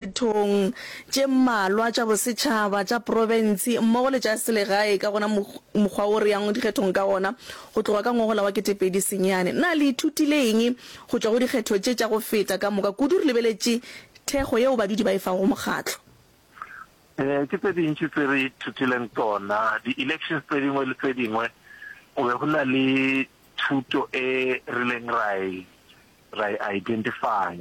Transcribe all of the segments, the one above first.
dithong tše mmalwa tša bosetšhaba, tša profensi mmogo le tša selegae ka gona mokgwa wo re yang dikgethong ka gona go tloga ka ngogola wa ketepedi senyane. Na le ithutile eng go tšwa go dikgetho tše tša go feta? Ka moka kudu re lebeletše thekgo yeo badudi ba e fago go mokgatlo. Ee, ke tše dintši tse re ithutileng tsona. Di-elections tse dingwe le tse dingwe go be go na le thuto e rileng ra e ra e identifya.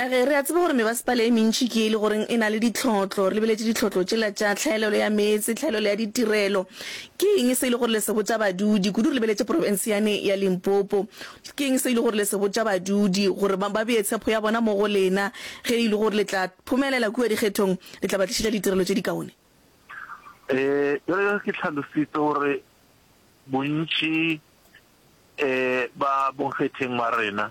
A Ge re a tseba gore mebasepala e mentši ke e le goreng e na le ditlhotlo, re lebeletše ditlhotlo tšela tša tlhaelelo ya meetse, tlhaelelo ya ditirelo. Ke eng se e le gore le se botša badudi, kudu re lebeletše profense yane ya Limpopo? Ke eng se e le gore le se botša badudi gore ba ba bee tshepho ya bona mo go lena ge e le gore le tla phumelela kua dikgethong, le tla ba tlišetša ditirelo tše dikaone? E Bjale ge ke hlalositse gore bontši ba bonkgetheng ba rena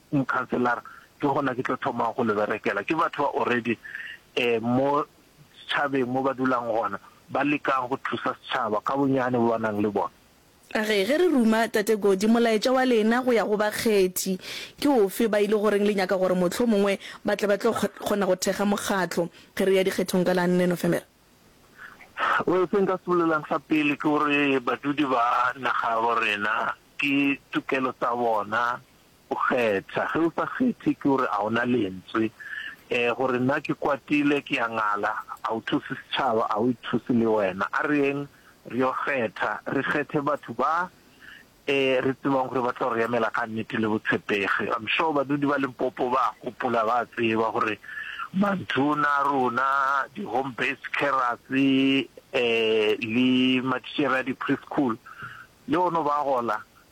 new councillor ke gona ke tlo thomago go le berekela ke batho ba already um mo setšhabeng mo ba dulang gona ba lekang go thusa setšhaba ka bonyane bo ba nang le bona. A re, Ge re ruma Tate Godi, molaetša wa lena go ya go bakgethi ke ofe? Ba ile go reng? Le nyaka gore mohlomongwe ba tle ba tlo kgona go thekga mokgatlo ge re ya dikgethong ka la nne Nofemere? Well, se nka se bolelang sa pele ke gore badudi ba naga ya borena ke tokelo tsa bona O kgetha. Ge o sa kgethe ke gore a o na lentswe. Um gore na ke kwatile, ke a ngala, a o thuse setšhaba, a o ithuse le wena. A re yeng re yo kgetha, re kgethe batho ba um re tsebang gore ba tlo re emela ka nnete le botshepegi. I'm sure badudi ba Limpopo ba a gopola, ba a tseba gore mantona a rona, di-home based carers um le matitšhere a di-preschool le ono ba gola.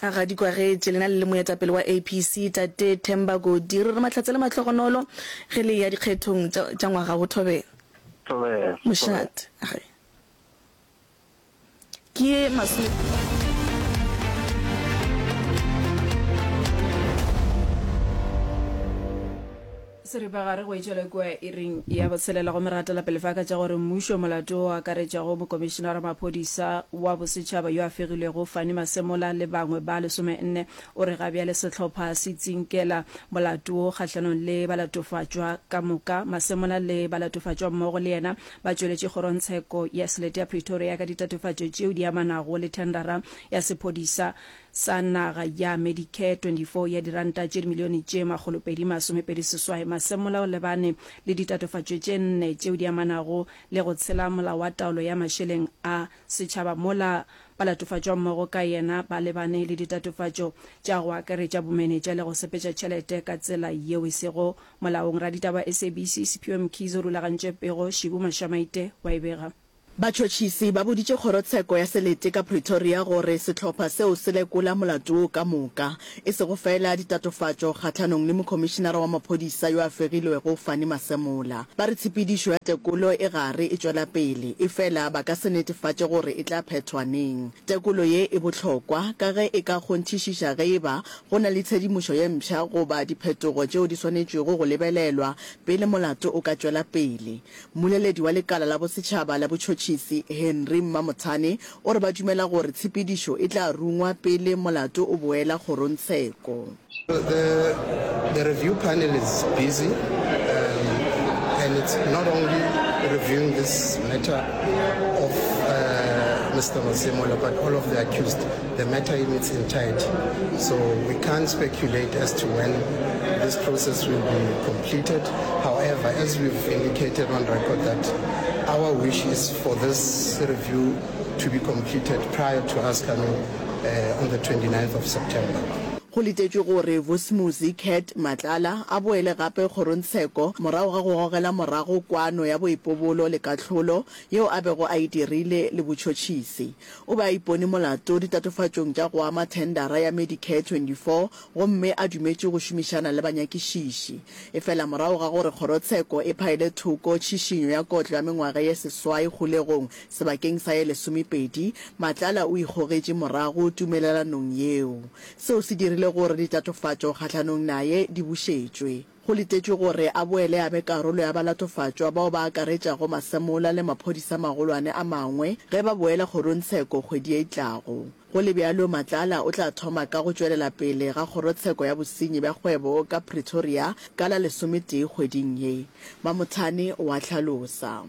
Ga di kwagetše. Lena le le moetapele wa APC, Tate Themba Godi, re re Mahlatse le mahlogonolo ge le eya dikgethong tša, tša ngwaga wo. Thobela. Thobela. Mošate. A re ke ye masome. Seripagare go etšwele kua iring ya botshelela go meratela pele fa ka tša gore mmušo molato o akaretšago mokomišenara maphodisa wa bosetšhaba yo a fegilwego Fanny Masemola le bangwe ba lesomenne o re ga bjale sehlopha se tsinkela molato wo kgahlanong le balatofatšwa ka moka. Masemola le balatofatšwa mmogo le yena ba tšweletše kgorontsheko ya selete ya Pretoria ka ditatofatšo tšeo di amanago le thendara ya sephodisa sa naga ya Medicare 24 ya diranta tše dimilione tše makgolopedi masomepedi seswai masemmola o lebane le ditatofatšo tše nne tšeo di amanago le go tshela molao wa taolo ya mašeleng a setšhaba mola balatofatšwammogo ka yena ba lebane le ditatofatšo tša go akaretša bomenetša le go sepetša tšhelete ka tsela yeo e sego molaong Raditaba SABC Sephiwe Mkhize o rulagantše pego Shibu Mashamaite wa e bega Batšhotšhisi ba boditše kgorotsheko ya selete ka Pretoria gore sehlopha seo se lekola molato wo ka moka, e sego feela ditatofatšo kgahlanong le mokhomišinara wa maphodisa yo a fegilwego Fannie Masemola. Ba re tshepedišo ya tekolo e gare e tšwela pele, efela ba ka se netefatše gore e tla phethwa neng. Tekolo ye e bohlokwa ka ge e ka kgonthišiša ge e ba go na le tshedimošo ye mpsha goba diphetogo tšeo di swanetšwego go lebelelwa pele molato o ka tšwela pele, Mmoleledi wa lekala la bosetšhaba la botšhotšhisi, Henry Mmamothane, o re ba dumela gore tshepedišo e tla rungwa pele molato o boela kgorongtsheko. The the review panel is busy um, and it's not only reviewing this matter of uh, Mr. Masemola but all of the accused. The matter in its entirety so we can't speculate as to when this process will be completed however as we've indicated on record that our wish is for this review to be completed prior to us coming uh, on the 29th of September. Go letetšwe gore Vusimuzi Cat Matlala a boele gape kgorontsheko morago ga go gogela morago kwano ya boipobolo le kahlolo yeo a bego a e dirile le botšhotšhisi. O be a ipone molato ditatofatšong tša go ama thendara ya Medicare 24 gomme a dumetše go šomišana le banyakišiši. Efela morago ga gore kgorotsheko e phaele thoko tšhišinyo ya kotlo ya mengwaga ye seswai kgolegong sebakeng sa ye lesomepedi, Matlala o ikgogetše morago tumelelanong yeo. Seo se dirile gore ditatofatšo kgahlanong naye di bušetšwe. Go letetšwe gore a boele a be karolo ya balatofatšwa bao ba akaretšago masemola le maphodisa a magolwane a mangwe ge ba boela kgorongtsheko kgwedi ye e tlago. Go le bjalo, Matlala o tla thoma ka go tšwelela pele ga kgorotsheko ya bosenyi bja kgwebo ka Pretoria ka la lesometee kgweding ye, Mamothane o a hlalosa.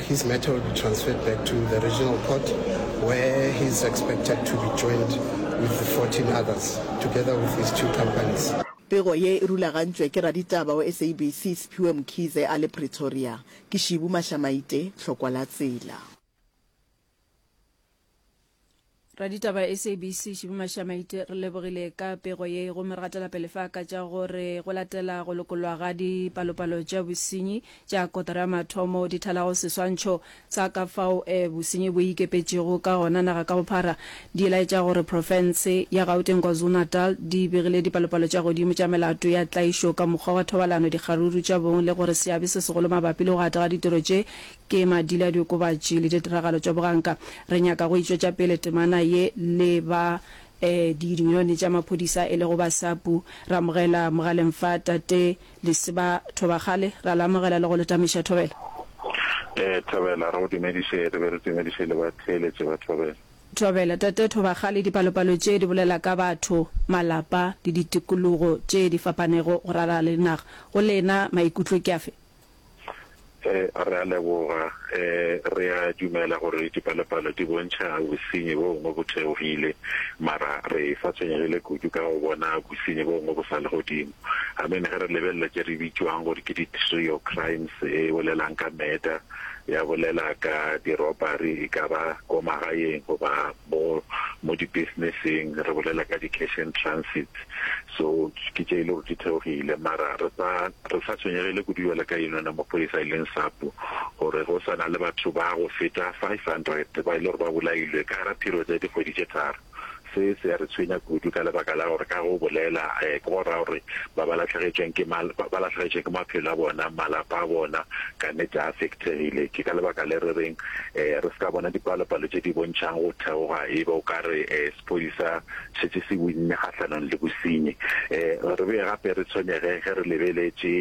His matter will be transferred back to the regional court where he is expected to be joined with the 14 others together with his two companies. Pego ye e rulagantšwe ke raditaba wa SABC Sphiwe Mkhize a le Pretoria. Ke Shibu Mashamaite, Tlhokwa la tsela. raditaba sabc šibi mašamaite re lebogile ka pego ye gomme re gatela pele fa ka tša gore go latela go lokolwa ga dipalopalo tša bosenyi tša kotara ya mathomo di thalago seswantšho sa ka fao eh, bosenyi bo ikepetšego ka gona naga ka bophara di laetša gore profense ya gauteng kwazulu-natal di begile dipalopalo tša godimo tša melato ya tlaišo ka mokgwa wa thobalano dikgaruru tša bong le gore seabe se segolo mabapi le go gata ga ditiro tše Ke madila a diokobatši le ditiragalo tša boganka. Re nyaka go e tšwetša pele temana ye le ba diyuniyone tša maphodisa e lego Basapu, ra amogela mogaleng fa Tate Lesiba Thobakgale, ra le amogela le go le tameša. Thobela. Thobela, re go dumediše, re be re dumediše le batheeletši ba Thobela. Thobela, Tate Thobakgale, dipalopalo tše di bolela ka batho, malapa le ditikologo tše di fapanego go ralala le naga. Go lena maikutlo ke afe? Re a leboga. Re a dumela gore dipalopalo di bontšha bosenyi bo bongwe bo theogile, mara re sa tshwenyegile kudu ka go bona bosenyi bo bongwe bo sa le godimo. Amen. Ge re lebelela tše re bitšwang gore ke di-trio crimes, e bolelang ka murder, ya bolela ka di-robbery, e ka ba ko magaeng goba Mo mo di business-eng re bolela ka di cash and transits so ke tše e le gore di theogile mara re sa re sa tshwenyegile kudu bjale ka eno na maphodisa e leng SAPU gore go sa na le batho ba go feta 500 ba e le gore ba bolailwe ka gara period ya dikgwedi tše tharo. Se se ya re tshwenya kudu ka lebaka la gore ka go bolela ke go raya gore ba ba lahlegetšweng ke ba lahlegetšwe ke maphelo a bona malapa a bona kannete a Thegile, ke ka lebaka le re reng re se ka bona dipalopalo tše di bontšhang go theoga e be o ka re sephodisa šetše se winne kgahlanong le bosenyi. Re be gape re tshwenyege ge re lebeletše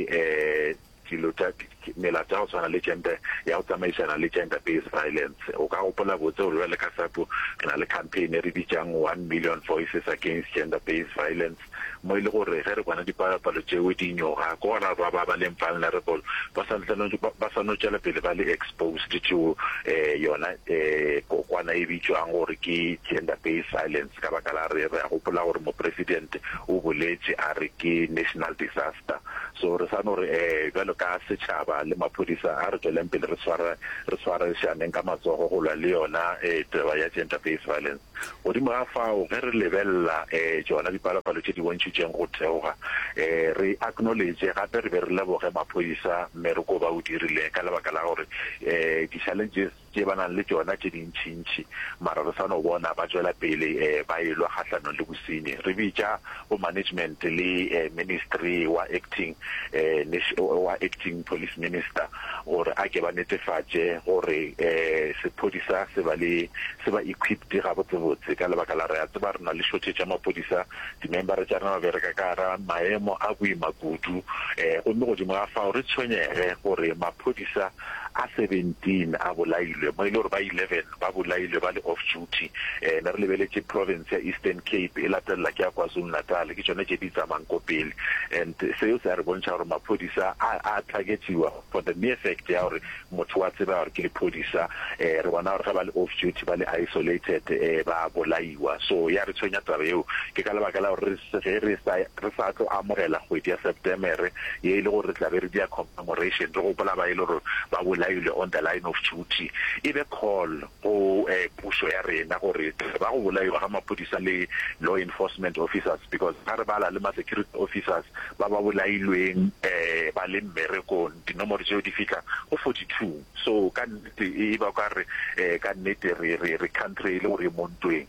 dilo tša melato ya go tshwana le gender ya go tsamaišana le gender based violence. O ka gopola botse gore bjale ka SAPO re na le campaign e re bitšang One Million Voices Against Gender Based Violence. mo e le gore ge re bona dipalopalo tšeo di inyoga, ke gona ba ba ba leng vulnerable ba sa ntse no ba sa no tšwela pele ba le exposed to um yona um kokwana e bitšwang gore ke gender based violence ka baka la re re a gopola gore mopresident o boletše a re ke national disaster. So re sa no re um bjalo ka setšhaba le maphodisa a re tšweleng pele re tshwara re tshwarišaneng ka matsogo go lwa le yona um taba ya gender based violence. Godimo ga fao, ge re lebelela um tšona dipalopalo tše di bontšhitšeng go theoga, um re acknowledge gape re be re leboge maphodisa mmereko ba o dirileng ka lebaka la gore um di-challenges tše ba nang le tšona tše dintšintši mara re sa no bona ba tšwela pele um ba e lwa kgahlanong le bosenyi. Re bitša bo management le um ministry wa acting um wa acting police minister gore a ke ba netefatše gore sephodisa se ba le se ba equipped gabotsebotse ka lebaka la re a tseba re na le shortage ya maphodisa dimembara tša rena ba bereka ka gara maemo a boima kudu gomme godimo ga fao re tshwenyege gore maphodisa a 17 a bolailwe mo e le gore ba 11 ba bolailwe ba le off duty. Um ne re lebeletše province ya Eastern Cape e latelela ke ya KwaZulu-Natal, ke tšone tše di tsamayang ko pele. And seo se a re bontšha gore maphodisa a a targetiwa for the mere fact ya gore motho wa tsebega gore ke lephodisa. Um re bona gore ge ba le off duty ba le isolated um ba a bolaiwa. So ya re tshwenya taba eo. Ke ka lebaka la gore re se ge re sa re sa tlo amogela kgwedi ya Septemere ye e le gore re tla be re dia Commemoration, re gopola ba e le gore ba bolailwe on the line of duty. E be call go pušo ya rena gore ba go bolaiwa ga maphodisa le law enforcement officers because ga re bala le ma security officers ba ba bolailweng ba le mmerekong dinomoro tšeo di fihla go 42. So ka nnete e ba o ka re ka nnete re country e le gore e mo ntweng.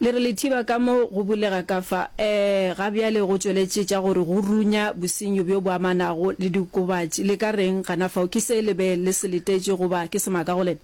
Le re Lethiba ka mo go bulega ka fa, ee, ga bjale go tšweletše tša gore go runya bosenyo bjo bo amanago le diokobatši. Le ka reng gana fao? Ke se le be le se letetše goba ke semaka go lena?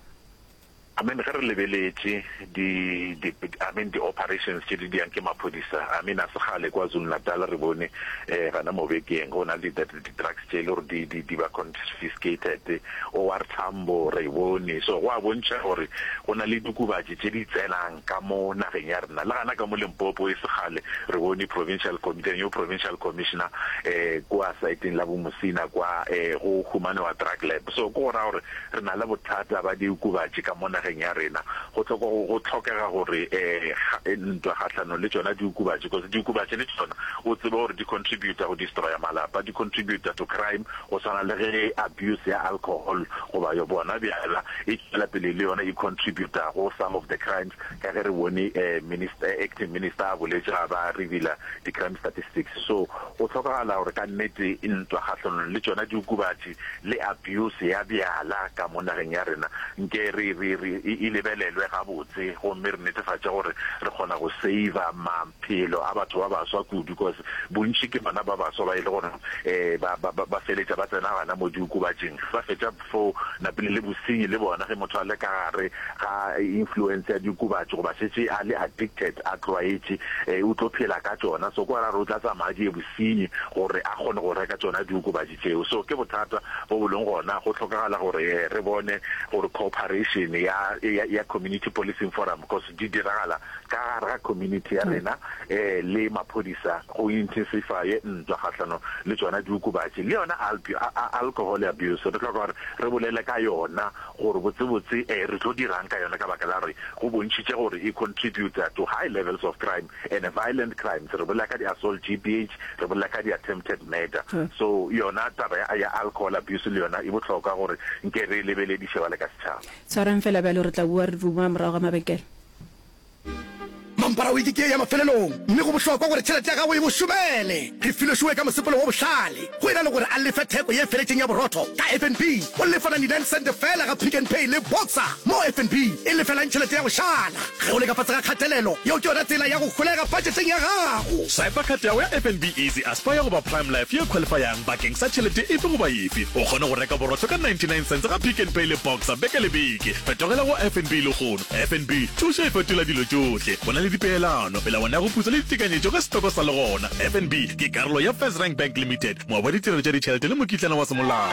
Amen, ge re lebeletše di, di, amen, di operations tše di diang ke maphodisa, amen, a se kgale kwa Zulu-Natal re bone, ee, gana mo bekeng go na le di, di-drugs tše e le gore di, di, di ba confiscated, OR Tambo re e bone, so go a bontšha gore go na le diokobatši tše di tsenang ka mo nageng ya rena. Le gana ka mo Limpopo e se kgale re bone provincial com-, the new provincial commissioner um kua saeteng la bo Musina kwa um go humanewa drug lab, so ke go raya gore Re na le bothata ba diokobatši ka mo nageng ya rena. Go tloko, go, go tlhokega gore e, ga, e, ntwa kgahlanong le tšona diokobatši, because diokobatši le tšona o tsebe gore di contributa go destroya malapa, di contributa to crime, go swana le ge abuse ya alcohol goba yo bona bjala e tšwela pele le yona e contributa go some of the crimes, ka ge re bone e, minister, e, acting minister a boletše ga ba revealer di-crime statistics. So go tlhokagala gore ka nnete ntwa kgahlanong le tšona diokobatši, le abuse ya bjala ka mo nageng ya rena nke re re re e lebelelwe gabotse gomme re netefatše gore re kgona go saver maphelo a batho ba baswa kudu because bontši ke bona ba baswa ba e le gore um ba ba ba feletša ba tsena gana mo diokobatšeng ba fetša fo napile le bosenyi le bona ge motho a le ka gare ga influence ya diokobatši goba šetše a le addicted a tlwaetše um o tlo phela ka tšona so kwa ra re o tla tsamaya di ye bosenyi gore a kgone go reka tšona diokobatši Tšeo. So ke bothata bo bo leng gona. Go hlokagala gore re bone gore cooperation ya, ya, ya Community Policing Forum, because di diragala ka gare ga community ya rena, le maphodisa go intensify-e ntwa kgahlanong le tsona diokobatši. Le yona alpi, a, a, alcohol abuse, re hloka gore re bolele ka yona gore botsebotse re tlo dirang ka yona ka baka la gore go bontšhitše gore e contributa to high levels of crime. Ene violent crimes re bolela ka di assault, GBH, re bolela ka di attempted murder. So yona taba ya ya alcohol abuse le yona e bohlokwa gore nke re e lebeledi šebale ka setšhaba. Tshwarang fela bjalo, re tla bua re duma morago ga mabekela. Mampara wiki ke ya mafelelong, mme go bohlokwa gore tšhelete ya gago e go šomele. Re filwe showe ka mosepelo wo bohlale. Go e na le gore a lefe theko ye feletšeng ya borotho ka FNB, o lefa 99 sente feela ga Pick n Pay le Boxer, moo FNB e lefelang tšhelete ya go šala. Ge o le ka fase ga kgatelelo, yeo ke yona tsela ya go holega budgeteng ya gago. Swipa khat ya gago ya FNB Easy Aspire goba Prime Life ye e khwalifayang bakeng sa tšhelete efe goba efe. O kgone go reka borotho ka 99 sente ga Pick n Pay le Boxer beke le beke. Fetogela go FNB lehono. FNB, thušo e fetola dilo tšohle. Go na le dipeelano, melawana ya go putsa le ditekanyetšo ge setoko sa le gona. FNB ke karolo ya FirstRand Bank Limited, moabi wa ditirelo tša ditšhelete le mokitlana wa semolao.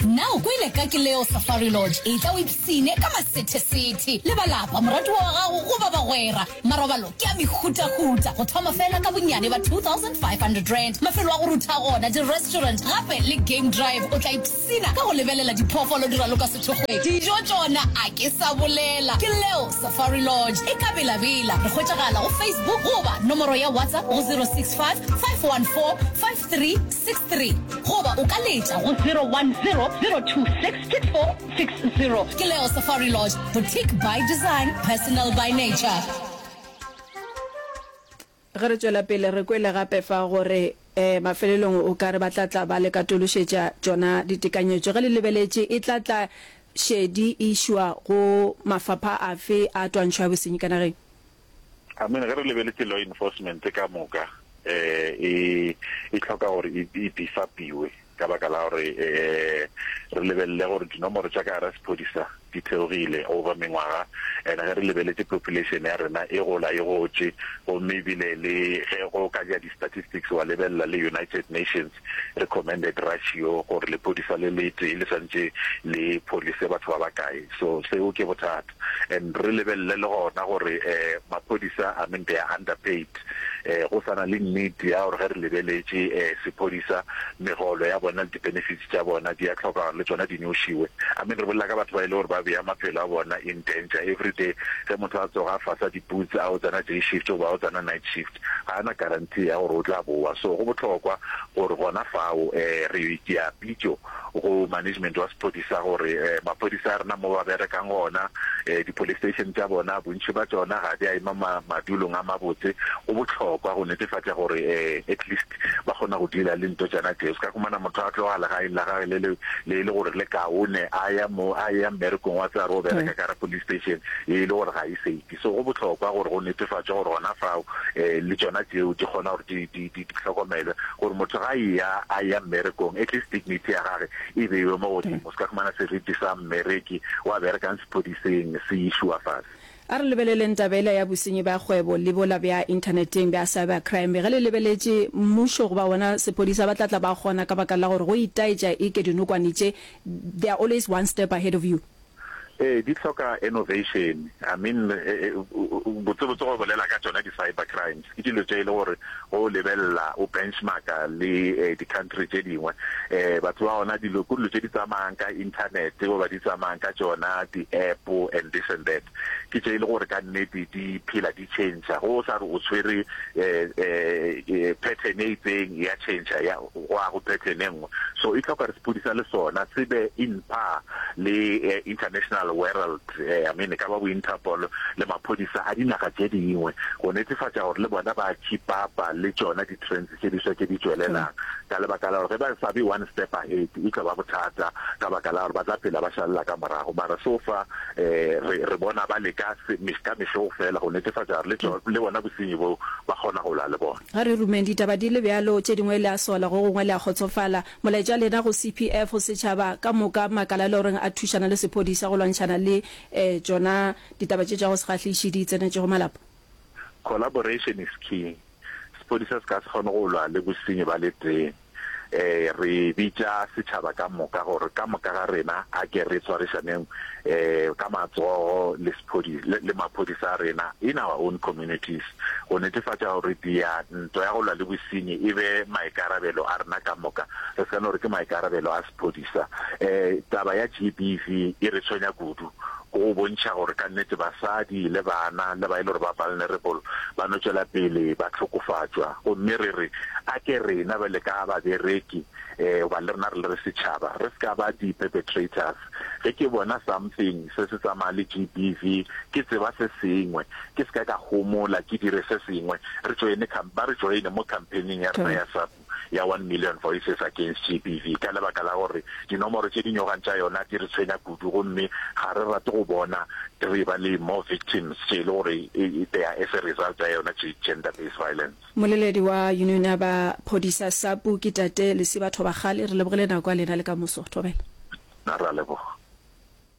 Na o kwele ka ke leo Safari Lodge e tla o ipsine ka masethesethe le balapa, moratiwa wa gago goba bagwera? Marobalo ke a mehutahuta, go thoma fela ka bonnyane ba R2,500. Mafelo a go rutha gona, di-restaurant gape le game drive o tla ipsina. Sina ka go lebelela diphoofolo di raloka sethokgweng, dijo tšona a ke sa bolela. Ke leo Safari Lodge e ka belabela. Re hwetšagala go Facebook goba nomoro ya WhatsApp go 065 514 5363 goba o ka letša go 010 026 6460. Ke leo Safari Lodge, boutique by design, personal by nature. Ge re tšwela pele, re kwele gape fa go re, E, mafelelong o ka re ba tla tla ba le katološetša tšona ditekanyetšo. Ge le lebeletše, e tla tla šedi e išwa go mafapha afe a twantšho ya bosenyi ka nageng? Amen. Ge re lebeletše, law enforcement ka moka e, e hloka gore e, e beef-up-iwe. ka baka la gore re lebelele gore dinomoro tša ka gara sephodisa di theogile over mengwaga and ge re lebeletše population ya rena e gola e gotše gomme ebile le ge go ka ja di-statistics wa lebelela le United Nations recommended ratio gore lephodisa le le tee le swantše le pholise batho ba bakae so seo ke bothata and re lebelele le gona gore um maphodisa I mean they are underpaid um go sa na le nnete ya gore ge re lebeletše um sephodisa megolo ya bona le di-benefits tša bona di a tlhoka gore le tsona di nyošiwe I mean re bolela ka batho ba e le gore ba beya maphelo a bona in danger every day ge motho a tsoga a fasa di-boots a o tsena day shift goba a o tsena night shift ga a na guarantee ya gore o tla bowa so go bohlokwa gore gona fao um re ke a pitšo go management wa sephodisa gore maphodisa a rena mo ba berekang gona, di-police station tša bona bontši ba tšona ga di a ema madulong a mabotse. Go bohlokwa go netefatša gore at least ba kgona go dealer le nto tšona tše. O se ka khumana motho a tloga legaeng la gage le le le e le gore le kaone a ya mo a ya mmerekong wa tseba re o bereka ka gare police station e le gore ga e safe. Se go bohlokwa gore go netefatšwe gore gona fao le tšona tšeo di kgona gore di, di, di, di hlokomelwe, gore motho ga a eya, a eya mmerekong, at least dignity ya gage e beiwe mo godimo. O se ka fumana seriti sa mmereki wa berekang sephodiseng se išuwa fase. A re lebeleleng taba yela ya bosenyi bja kgwebo le bola bja inthaneteng bja cyber crime. Ge le lebeletše, mmušo goba wona sephodisa ba tla tla ba kgona ka baka la gore go itaetša eke dinokwane tše, they are always one step ahead of you. Ee, di hloka innovation. I mean, botsebotse go bolela ka tšona di-cyber crimes ke dilo tše e le gore ge o lebelela o benchmark-a le di-country tše dingwe um batho ba gona dilo ke dilo tše di tsamayang ka internet goba di tsamayang ka tšona di-App and this and that ke tše e le gore ka nnete di phela di di tšhentšha go o sa re o tshwere pattern e itseng ya tšhentšha ya go a go pattern e nngwe so e tlhoka re sepodisa le sona se be in par le international world I mean e ka ba bo Interpol le maphodisa a dinaga tše dingwe go netefatša gore le bona ba tšhipapa le tšona di tše diswa tše di tšwelelang, ka lebaka la gore ge ba sa be one step ahead e tlo ba bothata ka baka la gore ba tla phela ba šalela ka morago. Mara so far um re re bona ba leka ka mehlo fela go netefatša gore le le bona bosenyi bo ba kgona go lwa le bona. Ga re rumeng ditaba di le bjalo, tše dingwe le a sola, go gongwe le a kgotsofala. Molaetša lena go CPF, go setšhaba ka moka, makala a le goreng a thušana le sephodisa go lwantšhana le um tšona ditaba tše tša go se kgahliše di tsenetšego malapa. Collaboration is king. Sepodisa se ka se kgone go lwa le bosenyi ba le tee. Um re bitša setšhaba ka moka gore ka moka ga rena a ke re tshwarišaneng um ka matsogo le sephodisa le, le maphodisa a rena in our own communities go netefatša gore dia nto ya go lwa le bosenyi e be maikarabelo a rena ka moka re se ka no re ke maikarabelo a Maphodisa, Taba ya GBV e re tshwenya kudu. Go bontšha gore ka nnete basadi le bana le ba e le gore ba vulnerable ba no tšwela pele ba hlokofatšwa gomme re re a ke rena bjale ka babereki goba le rena re le re setšhaba re se ka ba di-perpetrators. Ge ke bona something se se tsamaya le GBV ke tseba se sengwe ke se ka ka homola ke dire se sengwe re joine ba re joine mo campaign-ing ya rena ya sa. ya One Million Voices Against GBV ka lebaka la gore dinomoro tše di nyogang tša yona di re tshwenya kudu gomme ga re rate go bona re ba le more victims tše e le gore they are as a result ya yona gender based violence. Moleledi wa Union ya ba Phodisa Sapu ke Tate Lesiba Thobakgale. Re lebogile nako ya lena le ka moso. Thobela. Na ra leboga.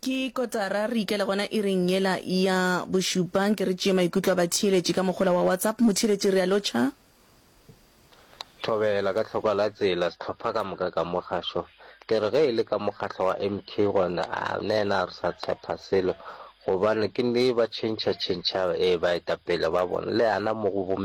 Ke kotara re ikela gona iring yela ya bošupa. Nke re tšee maikutlo a batheeletši ka mohola wa WhatsApp. Motheeletši re a lotšha. Thobela, ka tlhoko la tsela, sehlopha ka moka ka mo gašo. Ke re ge e le ka mokgatlo wa MK gona, a nena re sa tshepa selo, gobane ke nne ba tšhentšha tšhentšha ee baetapele ba bona, le ana mo go bo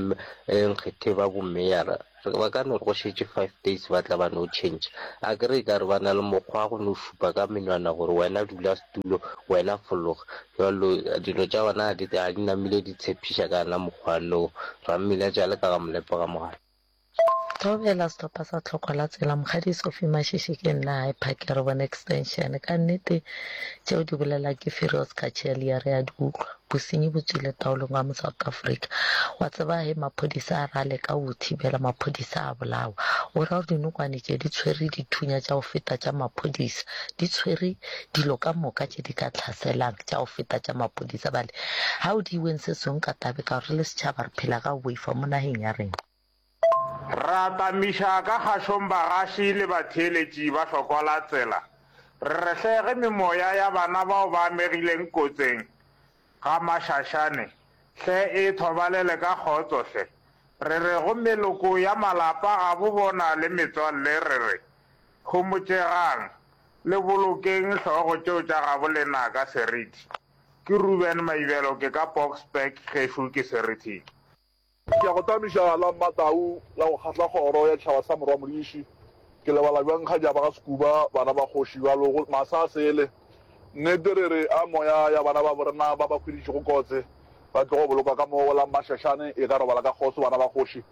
nkgethe ba bo meyara, ba ka no re go šetše five days ba tla ba no tšhentšha. A ke re e ka re ba na le mokgwa wa go no šupa ka menwana gore wena dula setulo, wena fologa. Bjalo dilo tša gona ga di, ga di namile di tshepiša ka yona mokgwa lo Rammila tša leka ga molepo ga mogala. Theogela setopa sa tlhoko la tsela, Mokgadi Sophie Mashishi ke nna High Park ya re bone extension. Ka nnete tšeo di bolela ke firi o se ka tšea lia re a di utlwa. Bosenyi bo tswile taolong wa mo South Africa. Wa tseba he maphodisa a re a leka go o thibela, maphodisa a bolawa. O ra gore dinokwane tše di tshwere dithunya tša go feta tša maphodisa, di tshwere dilo ka moka tše di ka tlhaselang tša go feta tša mapodisa bale ga o di iweng se sengwe ka tabe ka gore re le setšhaba re phela ka go boifa mo nageng ya rena. Re atamiša ka kgašong bagaši le batheeletši ba hlokola tsela, re rehlege memoya ya bana bao ba amegileng kotseng Ga Maxaxane, hle e thobalele ka kgotso hle. Re re go meloko ya malapa gabo bona le metswalle re re, Homotšegang, le bolokeng hlogo tšeo tša gabo lenaka seriti. Ke Reuben Maibelo ke ka Boksburg gešo ke Serithiki. Ke a go tamiša la Mmatau la go kgahla kgoro ya tšhaba sa Morwa Modiši. Ke lebala bjang kgajaba ga Sekuba, bana ba kgoši bjalo go masa a sele. Nnete re re a moya ya bana babo rena ba ba hweditšego kotse ba tlogo bolokwa ka mo go la Mmašašane e ka robala ka kgoso bana ba kgoši.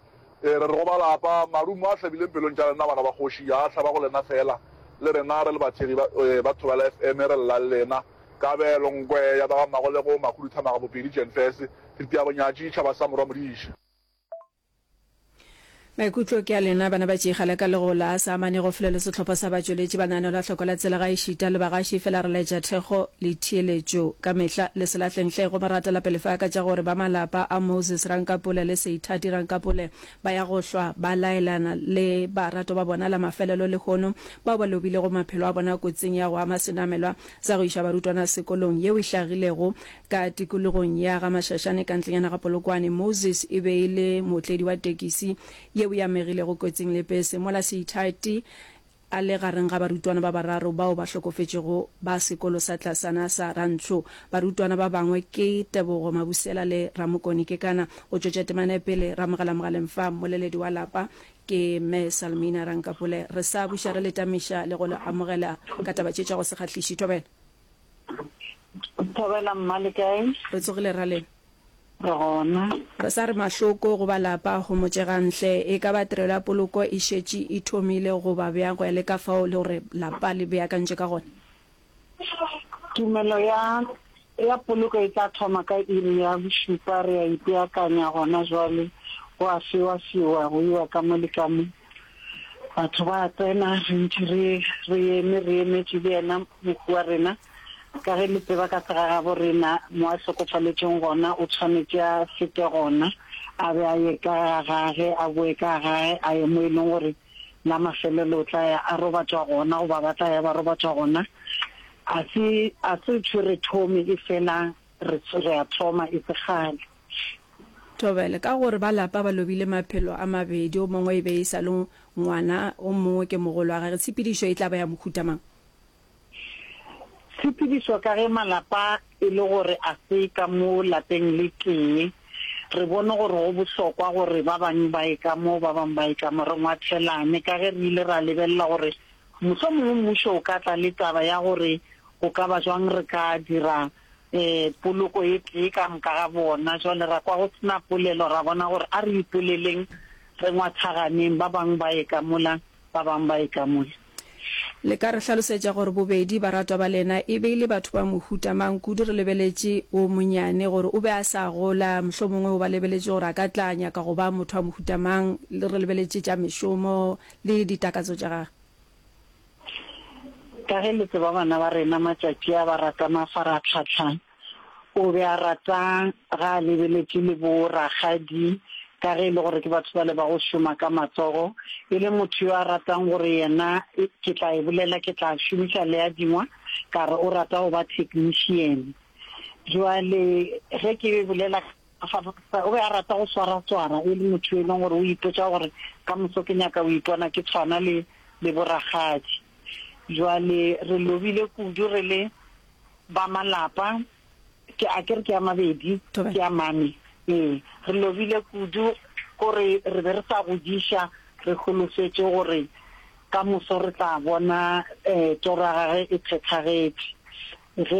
Ee, re re go ba lapa, marumo a hlabileng pelong tša lena bana ba kgoši a hlaba go lena fela. Le rena re le bathekgi ba ba Thobela FM re lla le lena. Kabelo, Nkwe, ya ba ga Mmagolego, Makhuduthamaga, Bopedi, Jenfese. Diteabonya tša ditšhaba sa Morwa Modiša. Maikutlo ke a lena bana ba Tšigala ka lego la sa amane go fole le sehlopha sa batšweletši ba naanelo a hloko la tsela ga e šita le bagaši fela re laetša thekgo le theeletšo ka mehla le se lahleng hle go maratela pele fa ka tša gore ba malapa a Moses Rankapule le Seithati Rankapule ba ya go hlwa ba laelana le barato ba bona la mafelelo lehono bao ba lobilego maphelo a bona kotsing ya go ama senamelwa sa go iša barutwana sekolong yeo e hlagilego Ka tikologong ya ga Mashashane ka ntlenyana ga Polokwane, Moses e be e le mootledi wa tekisi yeo e amegilego kotsing le pese mola Seithathi a le gareng ga barutwana ba bararo bao ba hlokofetšego ba sekolo sa tlasana sa Rantsho. Barutwana ba bangwe ke Tebogo Mabusela le Ramokoni Kekana. Go tšwetša temana pele, ramogela mogaleng fa mmoleledi wa lapa ke Mme Salmina Rankapule. Re sa buša re le tamiša le go le amogela ka taba tše tša go se kgahliše. Thobela. Thobela mma le kae? Re tsogile ra le. Re gona. Re sa re mahloko go ba lapa homotše ga ntle. E ka ba tirelo ya poloko e šetše e thomile goba bjang go ya le ka fao le gore lapa le beakantše ka gona? Tumelo ya ya poloko e tla thoma ka iri ya bošupa. Re a ipeakanya gona jwale, go a fiwa-fiwa go iwa ka mo le ka mo. Batho ba tsena, re ntši re re eme, re emetše le yena mohu wa rena. Ka ge le tseba ka segagabo rena, mo a hlokofaletšeng gona, o tshwanetše a se tle gona, a be a ye ka ga gage, a boe ka ga gage, a ye mo e leng gore la mafelelo o tla ya a robatšwa gona, goba ba tla ya ba robatšwa gona. A se, a se tshwe re thome, efela re, re a thoma, e se kgale. Thobela, Ka gore ba lapa ba lobile maphelo a mabedi, o mongwe e be e sa le ngwana, o mongwe ke mogolo wa gage, tshepedišo e tla ba ya mohuta mang? Tshepedišo, Ka ge malapa e le gore a se ka mo lapeng le tee, re bone gore go bohlokwa gore ba bangwe ba ye ka mo, ba bangwe ba ye ka mo, re ngwathelane. Ka ge re ile ra lebelela gore mohlomongwe mmušo o ka tla le taba ya gore go ka ba bjang re ka dira poloko e tee ka moka ga bona. Jwale ra kwa go se na polelo, ra bona gore a re ipoleleng, re ngwathaganeng, ba bangwe ba ye ka mola, ba bangwe ba ye ka mola. Le ka re hlalosetša gore bobedi baratwa ba lena e be e le batho ba mohuta mang? Kudu re lebeletše wo monnyane gore o be a sa gola, mohlomongwe o ba lebeletše gore a ka tla nyaka go ba motho wa mohuta mang, re lebeletše tša mešomo le ditakatso tša gagwe. Ka ge le tseba bana ba rena matšatši a ba rata mafaratlhatlha, o be a rata ga a lebeletše le bo rakgadi ka ge e le gore ke batho bale ba go šoma ka matsogo. E le motho yo a ratang gore yena ke tla e bolela ke tla šomiša le a dingwa ka re o rata go ba technician. Jwale ge ke bolela. Afa o be a rata go swaratswara, e le motho yo e lego gore o ipotša gore, Ka moso ke nyaka go ipona ke tshwana le, le borakgadi. Bjale re lobile kudu re le ba malapa, ke a ke re ke a mabedi, ke a mane. Ee, re lobile kudu gore re be re sa godiša re holofetše gore ka moso re tla bona um toro ya gagwe e phethagetše. Ge.